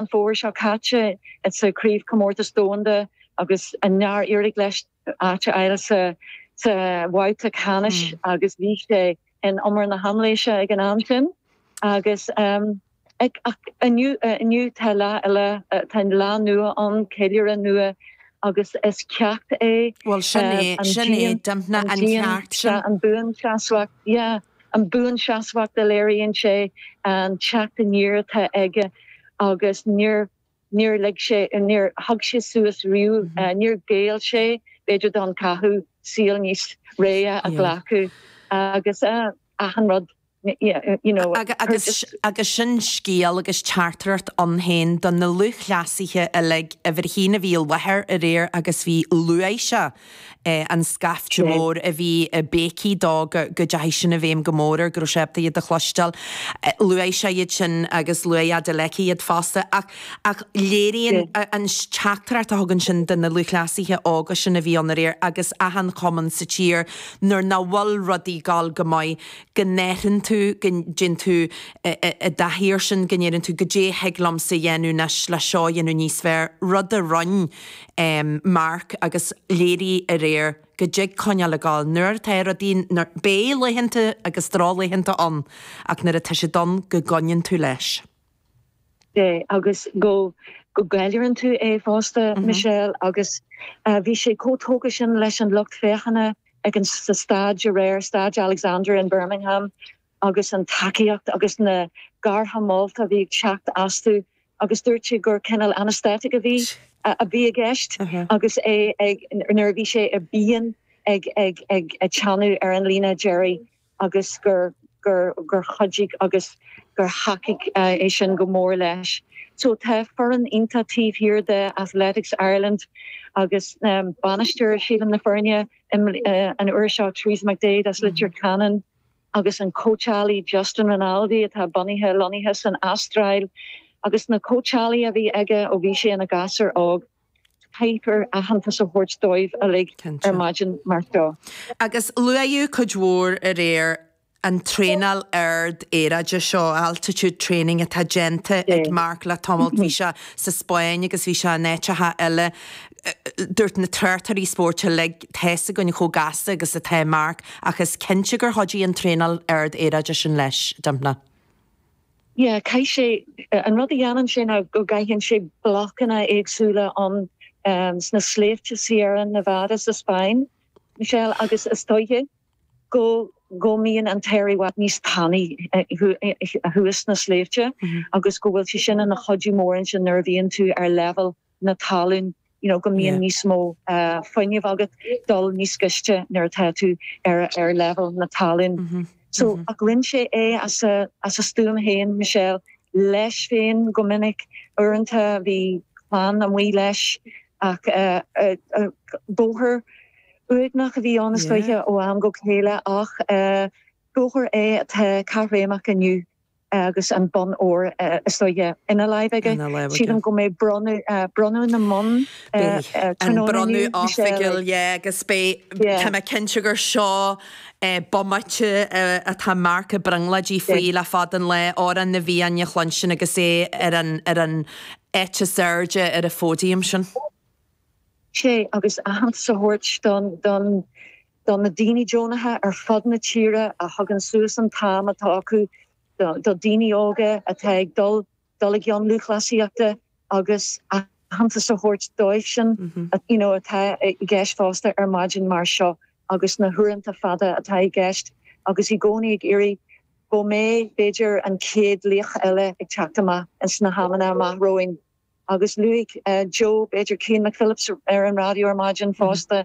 An fómhar seo caite sa Chraobhchomórtas Domhanda agus níor éirigh leis áit a fháil sa bhabhta ceannais agus bhí sé in umar na haimléise ag an am sin agus inniu tá lá eile, tá lá nua ag ceiliúradh nua agus is ceacht é. An bhuanseasmhacht, yeah. An buanseasmhacht a léiríonn sé, an teacht aniar atá aige agus níor lig sé, níor thug sé suas riamh, níor ghéill sé b'fhéidir don cathú saol níos réidhe a ghlacadh agus achan rud, you know. Agus sin scéal agus teachtaireacht ann féin do na lúthchleasaithe uilig ó Thír Chonaill a bhí i láthair aréir agus luaigh sé. an scaifte mór a bhí ag béicí dó go deachaigh sin i bhfeidhm go mór air, go raibh sé ábalta iad a chloisteáil. Luaigh sé iad sin agus luaigh Adeleke iad fosta ach ach léiríonn an teachtaireacht a thugann sin do na lúthchleasaithe óga sin a bhí ann aréir agus achan cumann sa tír nuair nach bhfuil rudaí ag gabháil go maith go dtéann tú, go dtéann tú i do shaothar sin go ndeireann tú goidé thig liomsa dhéanamh anois le seo dhéanamh níos fearr, rud a rinn. Mark agus léiríodh aréir go dtig coinneáil ag gabháil nuair atá rudaí, beidh laethanta agus drochlaethanta ann ach nuair atá siad ann go gcoinníonn tú leis. Sea agus go gceiliúrann tú é fosta, Michelle, agus bhí sé chomh tógtha sin leis an lucht féachana ag an, sa staid aréir, Staid Alexander in Birmingham, agus an tacaíocht agus na gártha molta a bhí ag teacht astu agus dúirt sé gur cineál anaesthetic a bhí a bhí i gceist agus é ag nuair a bhí sé i bpian ag ag ag teannadh ar an líne dheiridh agus gur gur gur chuidigh agus gur thacaigh é sin go mór leis. So tá foireann iontach taobh thiar de Athletics Ireland agus bainisteoir sílim na foirne an uair seo Teresa McDaid as Leitir Ceanainn, agus an cóitseálaí Justin Rinaldi atá bunaithe, lonnaithe san Astráil, agus na cóitseálaithe a bhí aige ó bhí sé ina ghasúr óg, caithfear aitheantas a thabhairt dóibh uilig ar maidin mar seo. Agus luaíodh cuid mhór aréir an traenáil ard aeráide seo, altitude training, atá déanta ag Mark le tamalt. Bhí sé sa Spáinn agus bhí sé in áiteacha eile Dúirt na tráchtairí spóirt uilig, Tá's againn chomh gasta agus atá Marc ach is cinnte gur chuidigh an traenáil ard-airde sin leis, Dympna. Yeah, caith sé, an rud a dhéanann sé ná go gcaitheann sé blocanna éagsúla ins na sléibhte Sierra Nevada sa Spáinn, Michelle, agus is dóiche go go mbíonn an t-aer i bhfad níos tanaí thuas sna sléibhte agus go bhfuil sé sin ina chuidiú mór ansin nuair a bhíonn tú ar leibhéal na talún, you know, go mbíonn níos mó fuinnimh agat dul níos giste nuair atá tú ar leibhéal na talún. So, ach rinn sé é as a as a stuaim féin, Michelle, leis féin go minic. Uaireanta bhí clann amuigh leis ach bóthar uaigneach a bhí ann is dóiche ó am go chéile ach bóthar é atá caithréimeach inniu. agus an bonn óir, is dóigh, ina láimh aige. Sílim go mbeidh bronnadh na mbonn tráthnóna inniu, Michelle. Yeah, agus beidh, tá mé cinnte gur seo bomaite atá Mark ag brionglóid faoi le fada an lá, Amhrán na bhFiann a chluinstin agus é ar an, ar an áit is airde ar an phóidiam sin. Sea, agus aitheantas a thabhairt don, don do na daoine deonacha ar fud na tíre a thugann suas an t-am atá acu do dhaoine óga atá ag dul i gcionn lúthchleasaíochta agus aitheantas a thabhairt dóibhsean atá i gceist fosta ar maidin mar seo agus na huaireanta fada atá i gceist agus i gcónaí ag iarraidh go mbeidh b'fhéidir an chéad laoch eile ag teacht amach sna hamanna amach romhainn. Agus luaigh Joe, b'fhéidir, Cian McPhillips ar an raidió ar maidin fosta,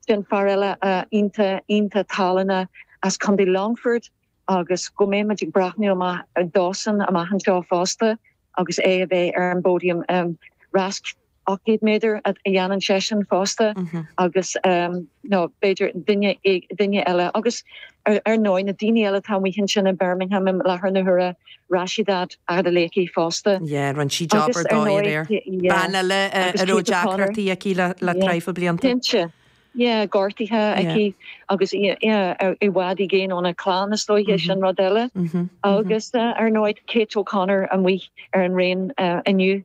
sin fear eile iontach, iontach tallainne as Contae Longfoirt agus go mbeidh muid ag breathnú amach dósan amach anseo fosta agus é a bheith ar an phóidiam. Rás 800 méadar a dhéanann seisean fosta agus nó b'fhéidir duine, duine eile agus ar ndóigh na daoine eile atá amuigh ansin i mBirmingham i láthair na huaire, Rhasidat Adeleke fosta. Yeah, rinne sí job ar dóigh aréir. Bean eile a raibh deacrachtaí aici le traidhfil blianta. Cinnte. Yeah, gortaithe aici agus i bhfad i gcéin óna clann is dóigh sin rud eile. Agus ar ndóigh Kate O'Connor amuigh ar an raon inniu.